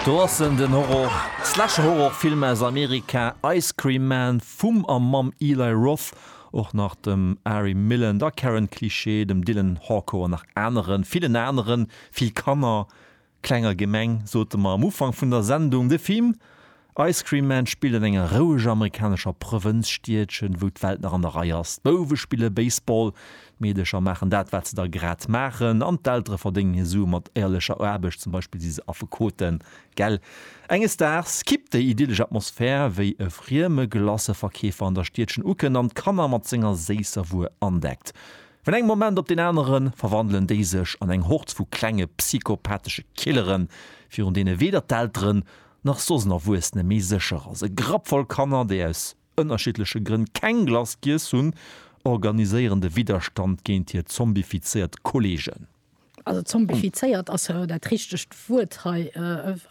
Do ass en, den Horror, Slasher-Horrorfilm aus Amerika Ice Cream Man vum a mam Eli Roth, och nach dem Ari Millen, der Karen Cliché, dem Dylan Harko an nach aneren, villen aneren, vill Kanner, Klenger Gemeng sote mer am Ufank vun der Sendung. De Film Ice Cream Man spillt an enger roueger amerikanescher Provënzstiedchen, wou d'Welt nach an der Rei ass. D'Bouwe spille Baseball, d'Meedecher maachen dat, wat se da grad maachen an d'Eltere verdéngen hir Sue mat éierlecher Aarbecht, zum Beispill si se Affekoten. Gell? Enges Daags kippt déi idyllesch Atmosphär, wéi e frieme Glacëverkeefer an der Stiedchen ukënnt an d'Kanner mat senger séisser Wuer andeckt. Vun engem Moment op deen anere verwandelen déi sech an eng Hord vu klenge psychopathesche Killeren, virun deene weder d'Elteren, nach soss en Erwuessene méi sécher ass. E Grapp voll Kanner, déi aus ënnerschiddleche Grënn keng Glace giess hunn, organiséieren de Widderstand géint hir zombifizéiert Kolleegen. Also zombifizéiert ass jo dat richtegt Wuert hei.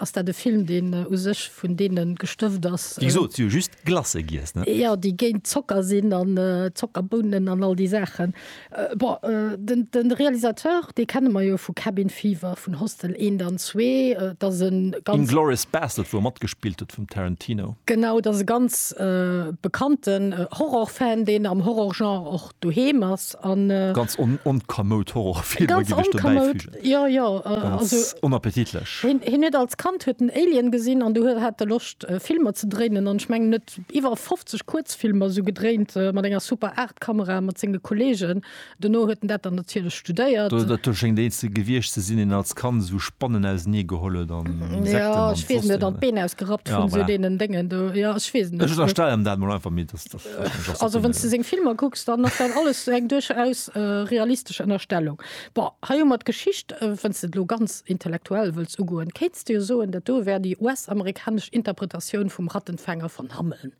Ass dat e Film, deen u sech vun deene gestëft ass? Déi gesot, si hu just Glace giess, ne? Jo, déi géint Zocker sinn an Zockerbounen an all déi Saachen. Bon, de Realisateur, dee kenne mer jo vu Cabin Fever, vun Hostel eent an zwee. Et ass e ganz. Inglourious Basterds, wou e matgespillt huet, vum Tarantino. Genau, et ass e ganz bekannten Horror-Fan, deen am Horror-Genre och doheem ass an. Ganz onkamoud Horrorfilmer géif ech dobäi füügen. Ganz onkamoud, jo, jo. Ganz onappetitlech. Hien huet als Kand huet en Alien gesinn an du hat e Loscht Filmer ze dréinen an ech mengen en huet iwwer 50 Kuerzfilmer esou gedréint mat enger Super 8 Kamera mat senge Kollegen. Dono huet en dat dann natierlech studéiert. Dat schéngt eent ze gewiescht ze sinn, deen als Kand esou Spannen ausenee geholl huet an Insekten an. Jo, ech weess net, an d'Been ausgerappt vun esou deenen Déngen do. Jo, ech weess et net. Ech ënnerstellen dat mol einfach, mee. Also wann du seng Filmer kucks, dann ass dat alles eng duerchaus realistesch Ënnerstellung. Bon, hei hu mer d'Geschicht, wann s de et elo ganz intellektuell wëlls ugoen, kéints de jo soen, dat do wär déi US-amerikanesch Interpretatioun vum Rattenfänger von Hameln.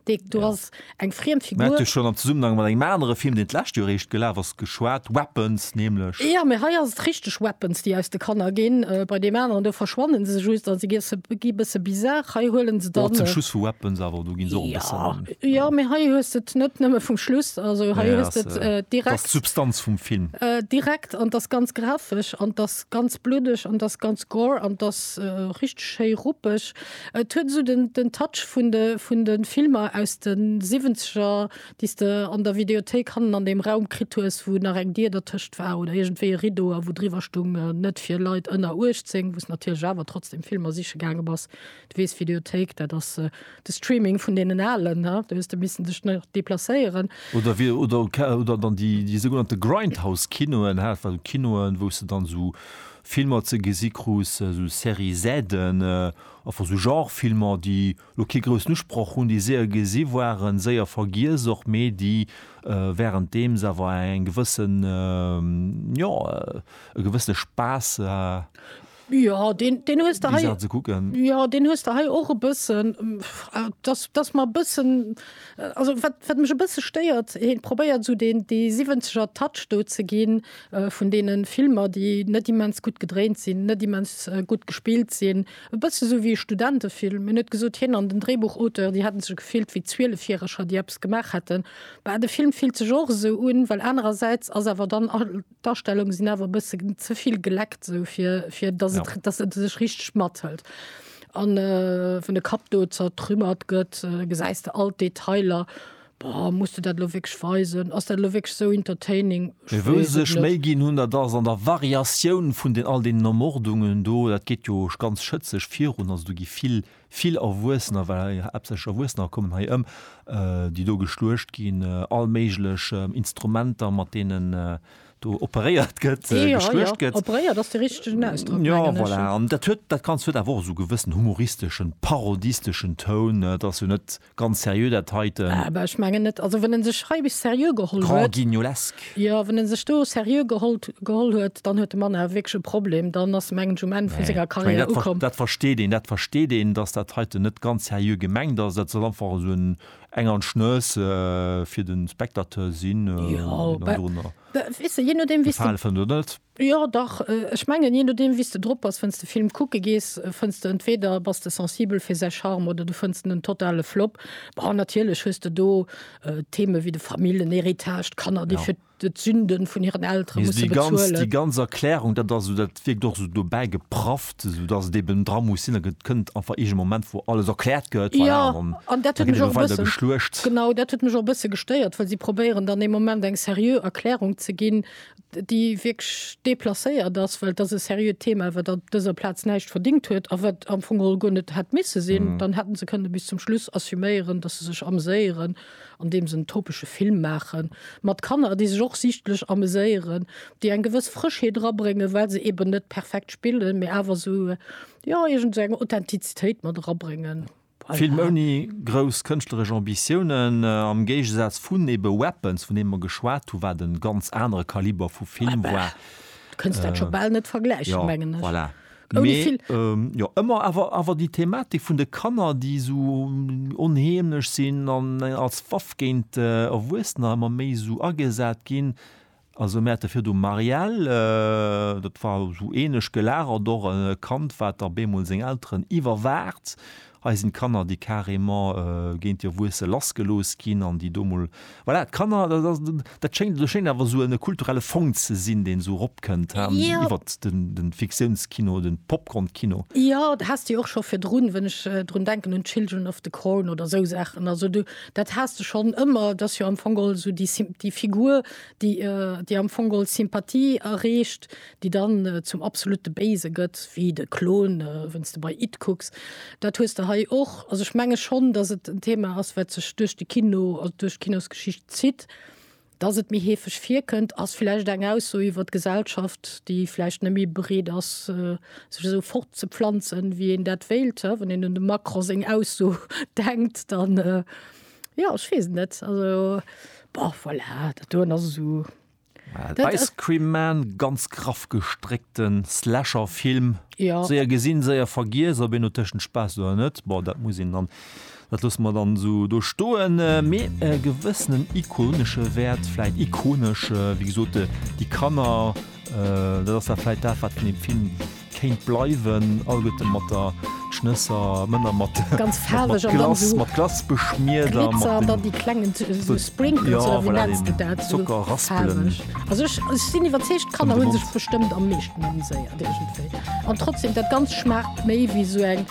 Dee do ass eng friem Figur. Mä et huet jo schonn am Zesummenhang mat engem anere Film, deen d'lescht Joer eréischt gelaf ass, geschwat, Weapons nämlech. Ja, mee hei ass et richteg Weapons, déi aus de Kanner ginn. Bei deem aneren do verschwannen se just a si gi e bësse bizar. Hei huelen se dann. Mat dem Schuss vu Weapons awer, do ginn se och e bëssen. Ja, ja, mee hei hues de et net nëmme vum Schluss. Also hei hues de et direkt. Dat ass d'Substanz vum Film. Direkt an et ass ganz grafesch an et ass ganz bluddeg an et ass ganz gore an et ass richteg schéi ruppeg. Et huet esou den Touch vun de Filmer aus de Siwwenzeger, déis de an der Videothéik hannen an deem Raum kritt hues, wou nach eng Dier dertëscht war oder iergendwéi e Rideau a wou driwwer stung Net fir Leit ënner 18, wou s natierlech awer trotzdem Filmer siche gaange bass. Du weess, Videothéik, dat ass de Streaming vun deenen Alen, ne? Do hues de missen dech nach deplacéieren. Oder wéi oder oder dann déi déi sougenannte Grindhouse-Kinoen hat, wat Kinoen, wou s de dann esou Filmer ze gesi krus, esou Série Z'en, einfach esou Genre-Filmer, déi lo kee groussen Usproch hunn, déi séier gesi waren, séier vergiess och, mee déi währenddeems awer eng gewëssen, jo, e gewëssene Spaass, Jo, deen, deen hues de déi hei, Saachen ze kucken. jo, deen hues de hei och e bëssen, dass, dass mer e bëssen, also wat, wat mech e bësse stéiert, hien probéiert esou deen, dee siwwenzeger Touch do ze ginn, vun deene Filmer, déi net immens gutt gedréint sinn, net immens gutt gespillt sinn, E bësse sou wéi e Studentefilm. Hien huet gesot, hien an den Dréibuchauteur, déi hätte sech gefillt wéi Zwielefjäreger, déi eppes gemaach hätten. Bah, de Film fillt sech och esou un, well anerersäits ass awer dann all d'Astellunge sinn awer e bësse ze vill geleckt, sou fir, fir dass et, dass et sech richteg mathëlt. An wann de Kapp do zertrümmert gëtt, gesäis de all d'Detailer. Boah, muss de dat elo wierklech weisen? Ass dat elo wierklech sou entertaining? Ech Wou weess se et sech net. Méi ginn hunn, dat ass an der Variatioun vun den all deenen Ermordungen do. Dat geet jo ganz schëtzeg virun. Also do gi vill, vill Erwuessener, well hei haaptsächlech Erwuessener kommen hei ëm, déi do geschluecht ginn. All méiglech Instrumenter, mat deenen do operéiert gëtt, Jo, jo, geschluecht gëtt. operéiert ass de richtegen Ausdrock, Jo, mengen ech. voilà. An dat huet, dat Ganzt huet awer och esou gewëssen humoristeschen, parodisteschen Toun. Et ass jo net Ganz seriö dat heiten. Ah bah ech mengen net, also wann en sech hei bis seriö geholl huet. Grand guignolesque. Jo, wann en sech do seriö gehollt geholl huet, dann huet de Mann awer wierklech e Problem, dann ass mengen ech um Enn vun senger Carrière ukomm. Dat versteet een, dat versteet een, dass dat heiten net ganz seriö gemengt ass, dat soll einfach esou en eng an d'Schnëss fir de Spectateur sinn, an dorunner gefale fënnt oder net. Jo dach, ech mengen jee nodeem wéis de drop bass, wenn's de Film kucke gees, fënns de entweeder bass de sensibel fir säi Charme oder du fënns en en totale Flop. Bon natierlech hues de do Themen wéi de Famillenhéritage, d'Kanner déi fir d'Sünden vun hiren Eltere musse bezuelen. Déi ganz Erklärung dat ass esou, dat wierkt och esou dobäi geprafft, esou dass et eben dra muss sinn, et kënnt einfach eege Moment wou alles erkläert gëtt, voilà, an dann gëtt elo weider geschluecht. Genau dat huet mech och e bësse gestéiert, well si probéieren dann ee Moment eng seriö Erklärung ze ginn, déi wierklech deplacéiert ass, well et ass e seriöt Thema, wat op dëser Plaz näischt verdingt huet a wat am Fong geholl guer net hätt misse sinn, dann hätte se kënne bis zum Schluss assuméieren, datt se sech ameséieren, andeems se en topesche Film maache mat Kanner, déi sech och sichtlech ameséieren, déi eng gewëss Frëschheet erabréngen, well se eeben net perfekt spillen, mee awer esou, jo, iergend esou eng Authentizitéit mat erabréngen. Film ouni grouss kënschtleresch Ambitiounen, am Géigesaz vun ebe Weapons, vun deem mer geschwat hunn, wat e ganz anere Kaliber vu Film war. Du kënns dat scho bal net vergläichen, mengen ech. Jo, voilà. Mee jo, ëmmer awer, awer déi Thematik vun de Kanner, déi esou onheemlech sinn an als Waff géint Erwuessener ëmmer méi esou agesat ginn, Also mir hate virdu Marielle, dat war esou ähnlech gelagert, och e Kand, wat op eemol seng Elteren iwwerwaacht. Hei sinn d'Kanner, déi carrément géint hir Wuesse lassgelooss ginn an déi do emol, voilà, d'Kanner, dat ass, dat schéngt, do schéngt awer esou e kulturelle Fong ze sinn, deen esou eropkënnt iwwert de Fiktiounskino, de Popcornkino. Jo, dat haass de jo och scho virdrun, wann ech drun denken un Children of the Corn oder esou Saachen. Also do Dat has de schonn ëmmer. Et ass jo am Fong geholl esou déi Symp-, déi Figur, déi, déi am Fong geholl Sympathie erreecht, déi dann zum absolute Béise gëtt, wéi de Klon, wann's de bei It kucks. Dat hues de hei och. Also ech menge schonn, datt et en Thema ass, wat sech duerch de Kino, also duerch d'Kinosgeschicht zitt. Dass et méi heefeg virkënnt, ass vläicht eng Ausso iwwer d'Gesellschaft, déi vläicht net méi bereet ass, sech esou fortzepflanzen, wéi een dat wéilt. Wann een un dem Macron seng Ausso denkt, dann, jo, ech weess et net. Also, bon, voilà, dat doen ass esou. Ice Cream Man, ganz graff gestréckte Slasher-Film, séier gesinn, séier vergiess. Ob een no Tëschenspaass oder net, bon, dat muss een dann Dat loosse mer dann esou do stoen. Mee e gewëssenen ikonesche Wäert, vläit ikonesch, wéi gesot, déi Kanner, dat ass da vläit dat, wat vun deem Film kéint bleiwen. All gëtt e mat der Schnësser, Männer mat Glace, mat Glace beschmiert a mat den, jo, voilà, deenen Zockerraspelen.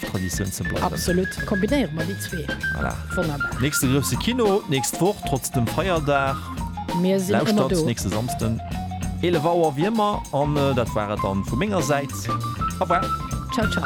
Traditioun ze bleiwen. Absolut, kombinéiere mer déi zwee. Voilà. Wonnerbar. Nächste grousse Kino d'nächst Woch, trotz dem Feierdag. Mir sinn ëmmer do. Lauschtert nächste Samsden 11 Auer wéi ëmmer. An dat war et dann vu menger Säit. Au revoir. Ciao, ciao.